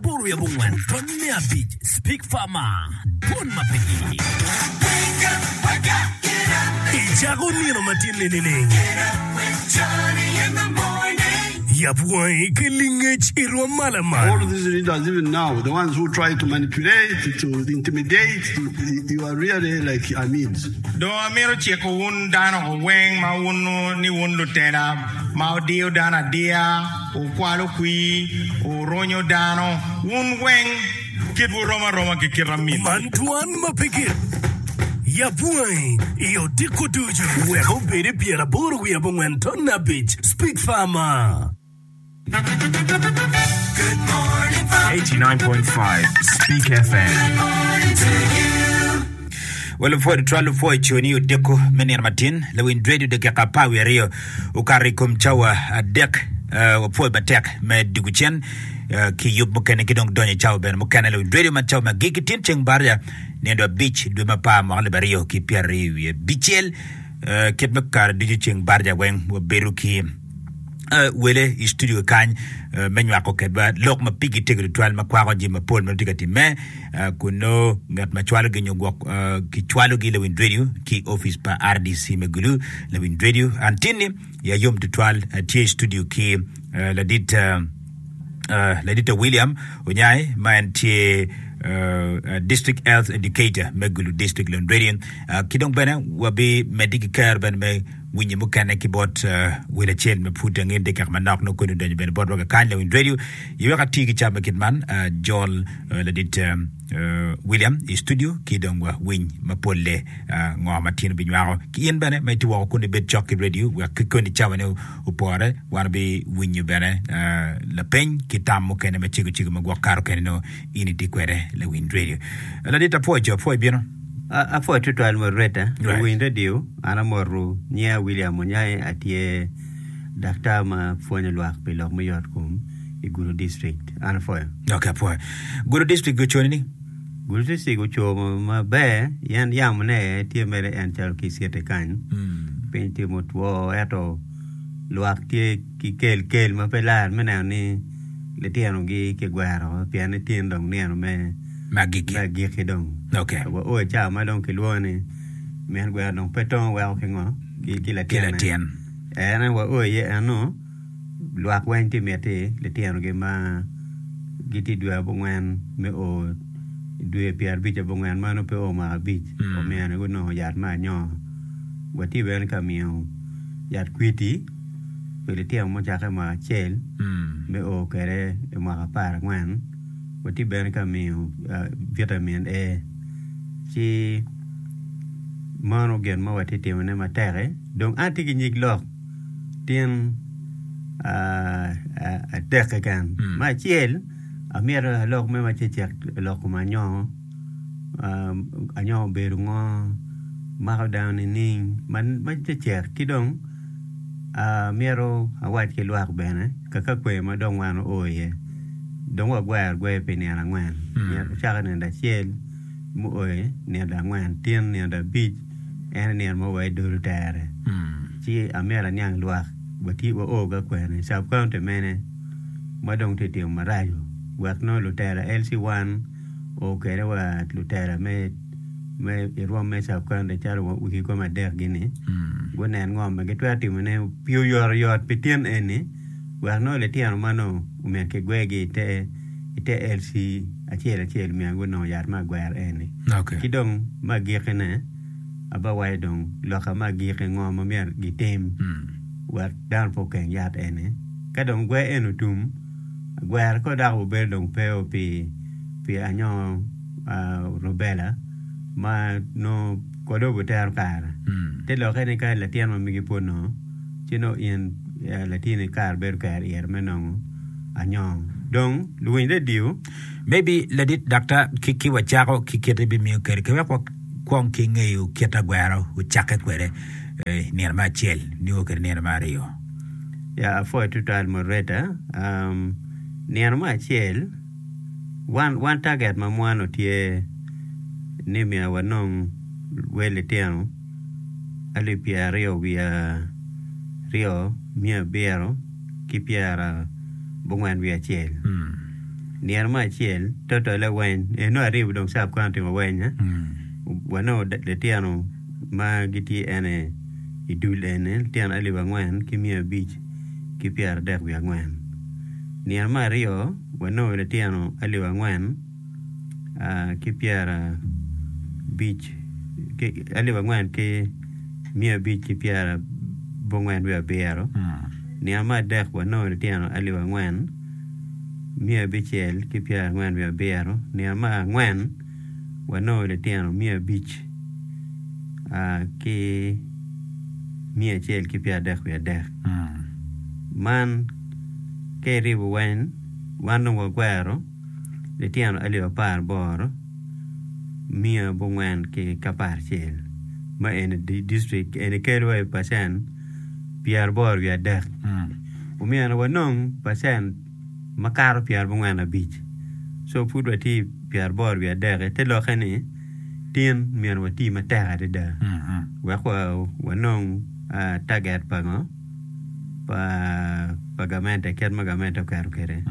Buryo abongwen pwony me abic Speak Farmer Dwon ma pe ye I cako nino ma tye ninining Yab wangi ki lingec I rwom ma lamal All these leaders even now the ones who try to manipulate to intimidate you are really like amids. Dong amito ciko wun dano weng ma wuno ni wun lutela ma odiyo dano adiya. Wukwalo kwir, wuronyo dano, wun weng, kitwu rom aroma ki kit amitwu. Man twan ma pe gik. Yab wangi i odiko ducu. Wek obedi pyeraboro wiye abongwen ton abic. Speak farmer. 89.5 Speak FM. Wa lupwod twal lupwo i coni odiko me nino matin, lawiny radio dakika apar wiye aryo. Okato i kom cawa adek, uh, wapwoyo matek me diko cen uh, ki yub mukene ki dong donyo i cawa bene mukene lewiny radio man cawa ma gigi tin ceng barja nindo abic dwe ma par mwaka libe aryo ki pyera aryo wiye bicel uh, kit me kare ducu ceng barja weng wabedo ki uh, wele i studio kany uh, me nywako kedwa lok ma pigi tego tutwal ma kwako jami mapol ma tye ka timme kun nongo ngat ma cwalogi nyo gwok kicwalogi lawind redio ki opic pa RDC me Gulu. Lawind redio Antinni ya yom tutwal tye i studio ki ladit Ladita William Onyai ma en tye District Health Educator me Gulu District Lon Redio ki dong bene wabi meddi ki kero bene me Winye mukene ki bot wel acel ma pud angen tye kek manok nongo koni odonyo bene botwa kakany Lawiny Radio i wek ati ki cam me kit man Jol ladit William i studio ki dong wa winy mapolle ngo ma tino binywako ki in bene ma iti woko kuni bed cok ki radio wek ki koni cawa ne upore wan bi winyo bene lapeny ki tam mukene ma cego cego ma gwok karo kene no in iti kwede Lawiny Radio ladit apwoco apwoc bino Apwod tutwal moderator i winy radio an amoto nyinga William Onyange atye daktar ma pwonyo lwak pi lok me yot kom i Gudo district an apwoyo. Ok apwoyo. Gudo district go cone ni? Gudo district ocomo maber yen yamo ne tye mere en calo ki city kany. Mm. Piny tye motwo eto lwak tye ki kelkel ma pe lar me neno ni litinogi kigwero pien ni tin dong nino me agikki dong. Waoo i cawa ma dong kilwongo ni min gweno dong pe tongo weko ki ngo? Ki latin. En aye waoo iye eno lwak weng tye miti litinogi ma gitye dwe abongwen me o dwe pyerabic abongwen ma nongo pe o mwaka abic omyero ni gunongo yat me anyongo. Watye bene ka miyo yat kwiti. pi litino mucakke mwaka acel me o kwede i mwaka apar angwen, watye bene ka miyo vitamin A. Ci meno gin ma watye ka timone matek-ki. Dong an atye ki nyig lok tyen adek keken. Me acel, amyero alok me macecek lok kom anyongo. anyoka obedo ngo mako dano nining ma tye cek ki dong myero awac ki lwak bene kaka kwer ma dong wan oo iye dong wagwero agwer pi nino angwen cako nino acel mu oyo nino angwen tyen nino abic en aye nino ma wa idolo tere ci amyero aniang lwak wa tye wa oo ka kwer ni sub county mene ma dong tye timo maraco wek nongo lutera LC1 oo kwede wa lutela me i rwom me sub county calo wa wigi kome adek gi ni gunen ngo ma gitwero timo ne pi oyoto yot pi tin eni wek nongo litino ma nongo omed ki gwegi i te LC acel acel myero gunong yat me agwero eni ki dong me agiki ne aba waco dong loka me agiki ngo ma myero gitim wek dano pe okeng yat eni ka dong gwer eni otum gwerko dok wubedo dong pe pi pi anyongo rubela ma nongo kode wutero kare te lokke ni ka latin ma megi pud nongo ci nongo in latini kare bedo kare ire me nongo anyongo dong luwiny redio maybe ladit daktar ki wacako ki kite bimiyo kede ki wek wakwong ki ngeyo kit agwero wucakke kwede nino ma acel nio kede nino ma aryo Ya apwoyo tutwal moderator. Um, nino me acel, wan, wan target ma mwano tye ni myero wanong wel litino alip pyeraryo wiye aryo, miya abiro ki pyera bongwen wiye acel. Mm. Nino me acel, total aweny, eno ariyo dong sub county aweny, eh? Mm. Wanongo da- litino ma gitye ene i dul eni litino alip angwen ki miya abic ki pyeradek wiye angwen. Nino me aryo wanongo litino alip angwen ki pyerabic alip angwen ki miya abic ki pyerabongwen wiye abiro. Nino me adek wanongo litino alip angwen miya abicel ki pyerangwen wiye abiro. Nino me angwen wanongo litino miya abic ki miya acel ki pyer adek wiye adek man ka iribo weng wan dong wakwero litino alip apar ki boro miya abongwen ki aparacel ma eni dictrik eni kelo wa i pacen pyer aboro wiye adek omyero wanong pacen makato pyerabongwen abic so pud watye i pyeraboro wiye adek-ki te lokke ni tin myero wati matek adada wek wanong taget pa ngo pa gamente kit ma gamente oketo kwede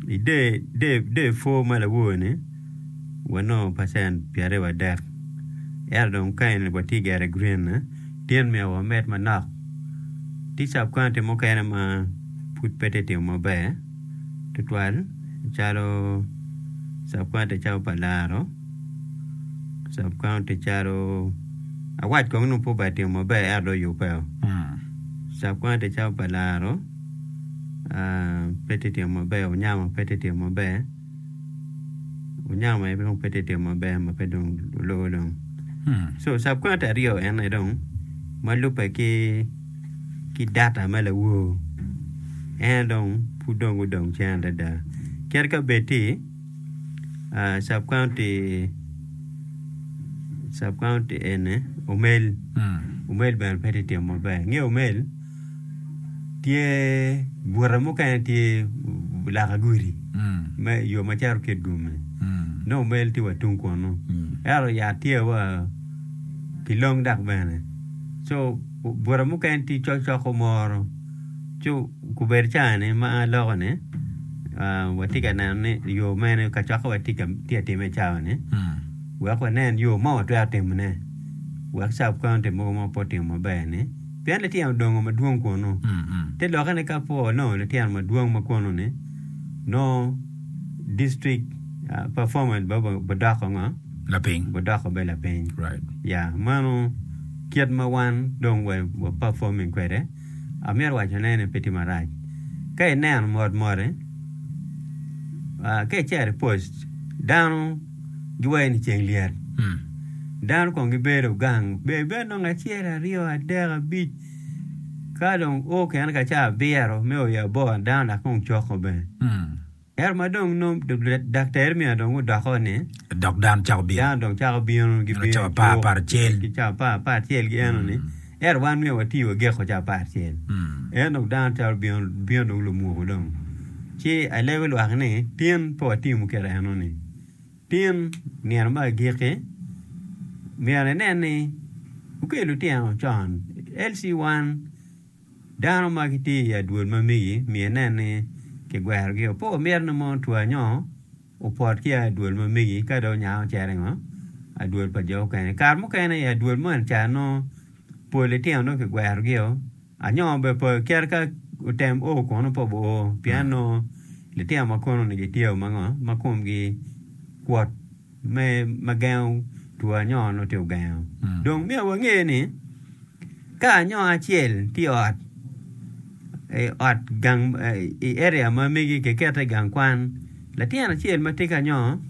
i der pwor ma lawor ni wanongo pacen pyeraryo wadek ento dong ka eni watye gire green ne. tyen myero wamed manok tye cabkwaunti mukene ma pud pe tye ka timo maber tutwal calo cabkwaunti calo pa laro cabkwaunti calo awac kong ni pud obene timo maber ento dong oyubbeo cabkwaunti calo pa laro pe tye ka timo maber Onyango pe tye ka timo maber. onyamo aye dong pe tye timo maber ma pe dong oloo dong so subcontract aryo en aye dong ma lubbe ki ki data me lawor en aye dong pud dong gudong cen adada kadi ka bed ci subcounty subcounty eni omel omel bene pe tye timo maber inge omel tye bute mukene tye laka gudi me yo ma cito ki idwomme nongo mer tye wa tung kunnu ento yat tye wa ki long dok bene co bute mukene tye cok cok o moro co kubedo cani ma a lokoni watye ka neno ni yo mene kacokka ma tye ka timme i cawani wek wanen yo ma watwero timone wek cawa pe onongo timo mo pe otimo maber-ni. pien lityen odongo madwong kunnu. Te lokkene ka po onongo lityen madwong ma kunnu-ni, nongo distrik pa Forman bidoko ngo? Lapiny. Bidoko bene lapiny. Right. Ya, meno kit ma wan dong wa performing kwede, amito wacone ni pe tye marac. Ka ineno motmote, ah, ka icero i post, dano giwaco ni ceng lyet. Mm. Dano kong gibedo gang, ber ibed nongo acel, aryo, adek, abic. Ka dong o kene ka ca abiro me oyo aboro dano dok kong coko bene. Mm. Ero ma dong nom Dakta Ermia dong odoko ni Dok dano cako bino. dano dong cako bino Dano gibino cako apar, apar acel. ki cako apar apar acel gi eno ni. Mm. Ento wan myero wati wageko ca apar cel. En dong dano twero bino, bino dong lumuku dong. Ci alego lwak ni, tin pe watimo muketo enoni. Tin nino me agikki, myero inen ni wukel lutino con. Elsie wan dano ma gitye i adwol ma megi, myero inen ni kigwerogi. Opo miti ni mono two anyongo. Opot ki a i dwol ma megi ka dong onyango cere ngo adwol pa jo okene kare mukene i adwol moni ca nongo pol litino nongo ki gwero gi o anyo bene pe kit ka otem o kono pe obo o pien nongo litino ma kono ni gitye o mango ma komgi kwot me ma gengo two anyo nongo tye ogengo dong myero wange ni ka anyo acel tye i ot i area ma megi kikete i gang kwan latin acel ma tye ki anyongo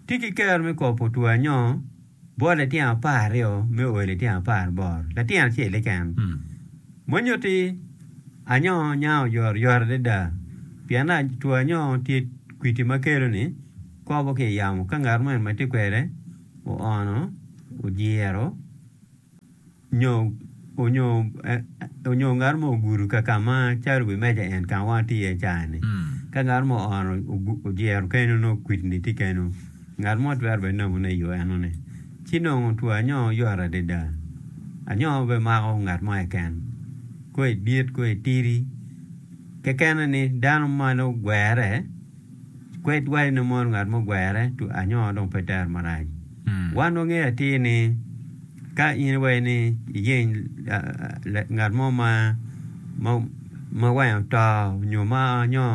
tye ki kero me kobo putwo anyongo bot litino apar aryo me o ki litino apar ki boro latin acel-le keken ma nyutti anyongo nyango oyotoyot adada pien two anyongo tye kwidi ma kelone kobo ki i yamo ka ngat mo ma tye kwede oono ojiro. Onyo ngat mo ogudo ka ka ma calo wi meja en ka ma wan watye iye caa-ni, ka ngat mo oono ojiro keno nongo kwidini tye keno, ngat mo twero bene nemone i yo enoni. Ci nongo two anyongo yot adada. Anyongo bene mako ngat mo keken, ko idit ko itidi. Kekene ni dano ma nongo ogwere. Kwed wa in imon ngat mugwere to anyo dong pe ter marac. Wan wangeyo atir ni ka in iwaco ni iyeny ngat mo ma ma wange oto nyo ma nyo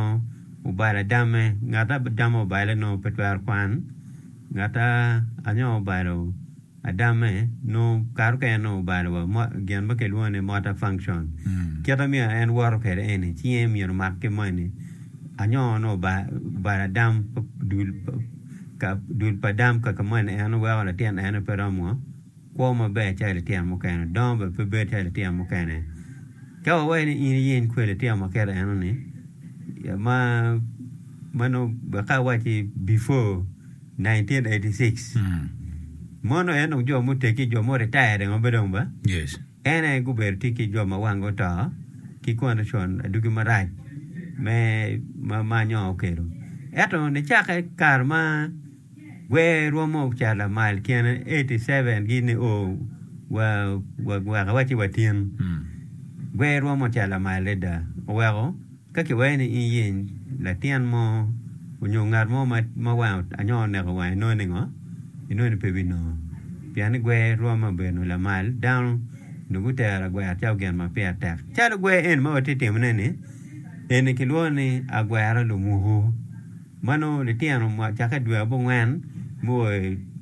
obalo adame ngat adame obale nongo pe twero kwan ngat anyo obalo Adame nongo kare mukene nongo obalo wa gin ma kilwongo ni motor function. Kite myero en woto kwede eni, cinge myero omak ki moni. Anyongo nongo obalo Adam, dul, dul pa Adam kaka moni en weko latin ene pe romo kwo maber calo litino mukene, dongo bene pe bedo calo litino mukene. Ka wawaco ni in iyeny kwede litino ma kit enoni, ma, ma nongo wek ka awacci before. 1986 mono en dong jo muteggi jo mo retired ngo be dong ba Yes. en aye gubedo tye ki jo ma wangi oto ki condition adugi marac me ma ma nyo okelo ento nicake kare ma gwer romo cat lamal kine 87 gini o wa wa weka waci watin Mm. gwer romo cat lamal adada oweko Ka kiwayi ni iyeny latin mo onyo ngat mo ma wange anyo oneko wange inongo ni ngo? Inongo ni pe binongo. Pien ni gwer rwom me bedo lamal dano onongo gutero agwera calo gin ma pire tek. Calo gwer eni ma watye ka timone ni, eni kilwongo ni agwera lumuku. Ma nongo litino ma cakke i dwe abongwen me o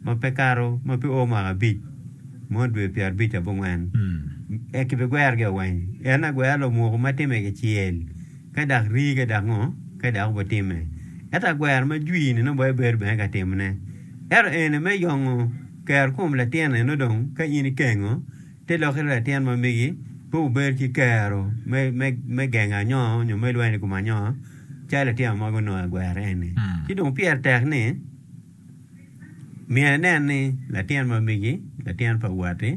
ma pe kato ma pe o mwaka abic, mono dwe pyerabic ki abongwen, eka kibigwerogi awany. En agwera lomoko ma timme kicel, ka dok rii ka dok ngo, ka dok obitimme. Ento agwera ma jwir-ni nongo bene bedo bene ka timone. Ento eni me yongo kerokom latinoni nongo dong ka in ikengo, Te lok iri latin ma megi, pe wubed ki kero me gengo anyongo nyo me lweny i kom anyongo, calo litino mogo onongo i gwer eni. Ci dong pire tek ni myero inen ni latin ma megi, latin pa watti,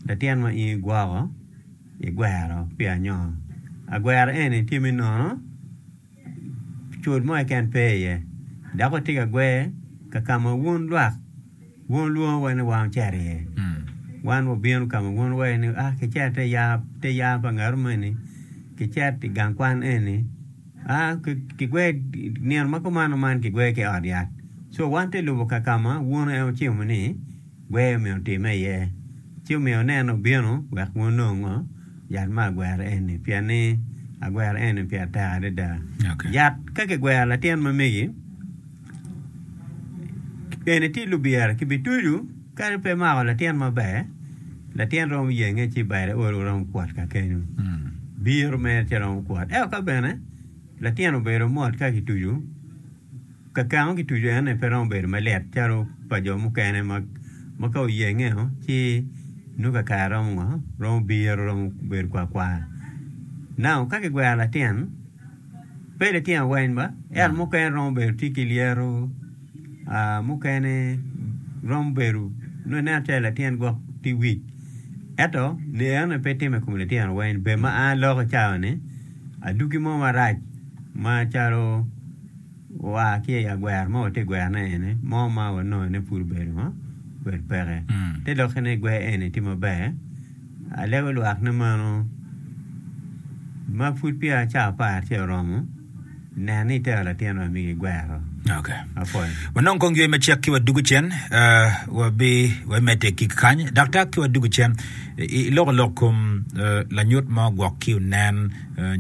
latin ma in igwoko, igwero pi anyongo. Agwero eni tye me nono, cut mo keken pe iye, dok watye ka gwer ka kama wun lwak, Wun wulwongo wa ni wang cito iye, wan wabino ka ma wun wuwaco ni, 'A, kicit ite yar pa ngat omeni, kicit i gang kwan eni, a, kigwer nino ma kumano man kigwer ki i ot yat. Co, wan te lubo ka ka ma wun en wucimo ni gwer myero otimme iye, ci omiyo anene obino wek wunong ngo? Yat me agwera eni, pien ni agwera eni pire tek adada. Yat ka kigwero latin ma megi, Eni tye lubira ki bi tucu kadi pe mako latin maber latin romo yenge ci bade olo romo kwot kakenyo biro mere ci romo kwot ento ka bene latin obedo mot ka ki tucu kakemo ki tucu ene pe romo bedo malit calo pa jo mukene ma ka oyenge o ci nongo kakare romo ngo romo biro romo bedo kwar kwar now ka ki gwero latin Pe litino weng ba, ento mukene romo bedo tye ki lyeto, mukene romo bedo nongo ineno calo latin gwok tye wic. Ento enoni pe timme i kom litino weng. Bed ma a lok i cawa ni adwogi mo marac macalo oa ki i agwero ma watye ka gwero ne eni mo ma wanongo ni pud obedo peke, te doki ni gwer eni tye maber. Alego lwak ni meno ma pud peya caa apar tye oromo nen ni itero latin ma migi gwero. Okay. Apol. Wanong kong ywe macek ki wadugu cen, uh, wabi wemete ki kany. Daktar ki wadugu cen, i- iloko lok kom uh, lanyut mo gwok ki onen, uh,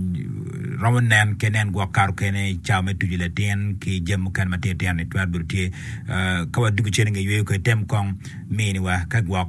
romo nen ke nen gwok karo kene i cawa me tuju latin ki jam mukene ma titino ni twero bedo tye. Uh, ka wadugu cen inge yweyo kwe, tem kong miniwa ka gwok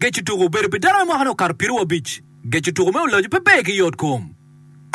Gec tuko obedo pi dano me mwaka-ni okato piero wiye abic. Gec tuko me ulacu pe ber ki yot kom.